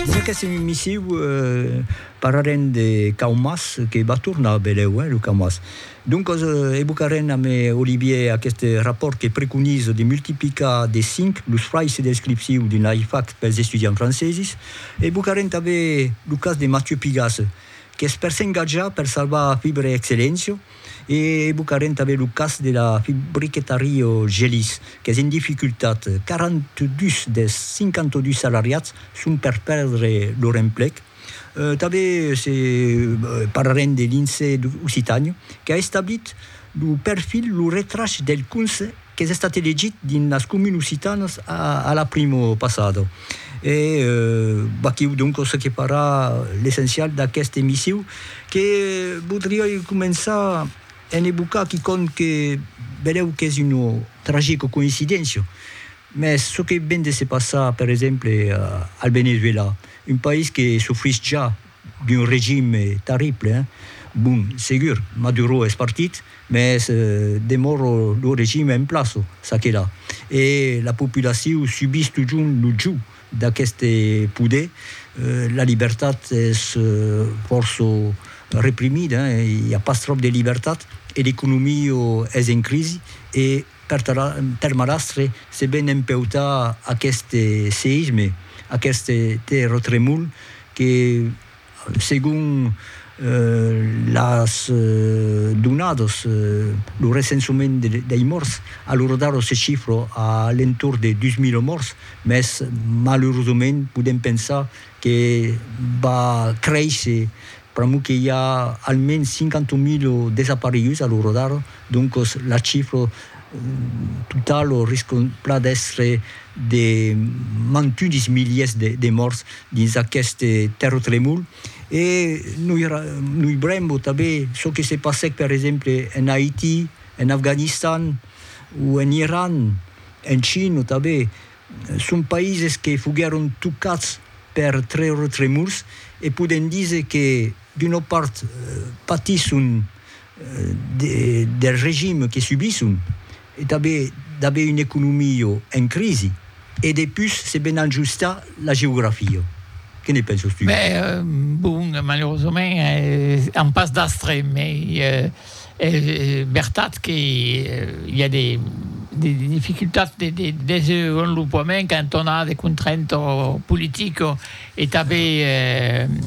Dins aquesta emissiu parlarem de caumas que va tornar, vedèu, lo caumas. Doncas evocarem amb Olivier aqueste rapòrt que preconiza de multiplicar de cinc los fraisses de descripciu d'un AIFAC pels estudiants francesis. Evocarem tanben lo cas de Mathieu Pigasse, qu'es per s'engatjar per salvar Fibre Excellentio. E evocarem tanben lo cas de la fabriqueta Rio Gelís, qu'es en dificultat. 42 dels 52 salariats son per pèrdre lor emplec. Tanben se parlarem de l'INSEE Occitània, qu'a establit lo perfil Lo retrach del cons qu'es estat elegit dins las comunes occitanas a la primo passada. E vaquiu donc ce que para l'essencial d'aqueste missiu que vodriái començar en evocar quicòm que vedèu qu'es una tragica coïncidéncia, mès ce que ven de se passar per exemple al Venezuela, un país que sofrís ja d'un regime terrible, hein. Bon, segur, Maduro es partit, mès demòro lo regime en plaço, ça que la. E la populacion subís totjorn lo jòu d'aqueste poder, la libertat es fòrça reprimida, i a pas tròp de libertat, e l'economia es en crisi, e. Per Marastre, se ven empeutar aqueste seisme, aqueste terratremol que, segon las donadas, lo recensament dei mòrts, a l'ora d'ara se chifra a l'entorn de 2.000 mòrts, mès malerosament podèm pensar que va créisser Pr'amor que i a almens 50 milo desapareguts a lo rodar, doncos la chifra totala risca plan d'èstre de mantunis miliers de mòrts dins aqueste tèrratremol. E noi noibrembo tanben çò que se passèc per exemple en Haití, en Afganistan o en Iran, en China tanben, Son païses que foguèron tocats per treurtremors e podèm díser que d'una part patisson del regime que subisson e tanben d'aver una economia en crisi e depús se ven ajustar la geografia. Que ne penses tu? Bèh, bon, malerosament an pas d'astre, mai Es vertat que i a de dificultats de desenvolopament quand on a de contraintes politiques e tanben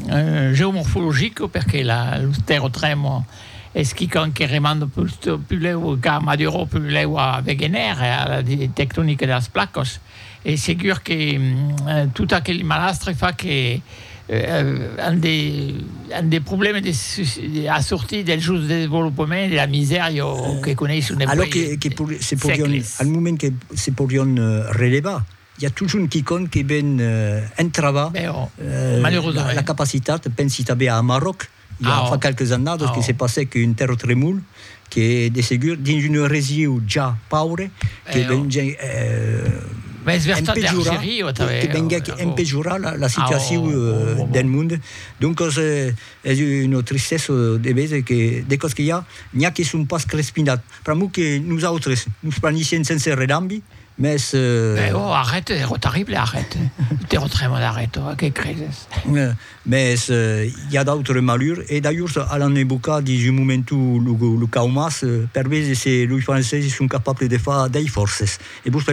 geomorfologiques, perque los terratrèmols es quicòm que remanda pus lèu cap a Maduro, pus lèu a Wegener e a la tectonica de las placas. Es segur que tot aquel malastre fa que an de problèmes de a sortir del sosdesvolopament e de la misèria o que coneisson dempuèi sègles. Alòs que se podion, al moment que se podion relevar, i a totjorn quicòm que ven entravar la capacitat, pensi tanben a Amaròc, I a fa qualques annadas que se passèc un tèrratremol que de segur dins un regiu ja paure que venguèc empejorar, que venguèc empejorar la situacion del mond. Doncas es una tristessa de veser que de còps que i a, n'i a que son pas crespinats. Pr'amor que nosautres nos planissèm sense redambi, mès. Arrèt, ero terrible, arrèt. Tèrratremol, arrèt, que creses? Mès i a d'autres malures, e d'ajors alan embocar dins un momentu lo cau mas, per veser se loi franceses son capables de far dei fòrces. E vos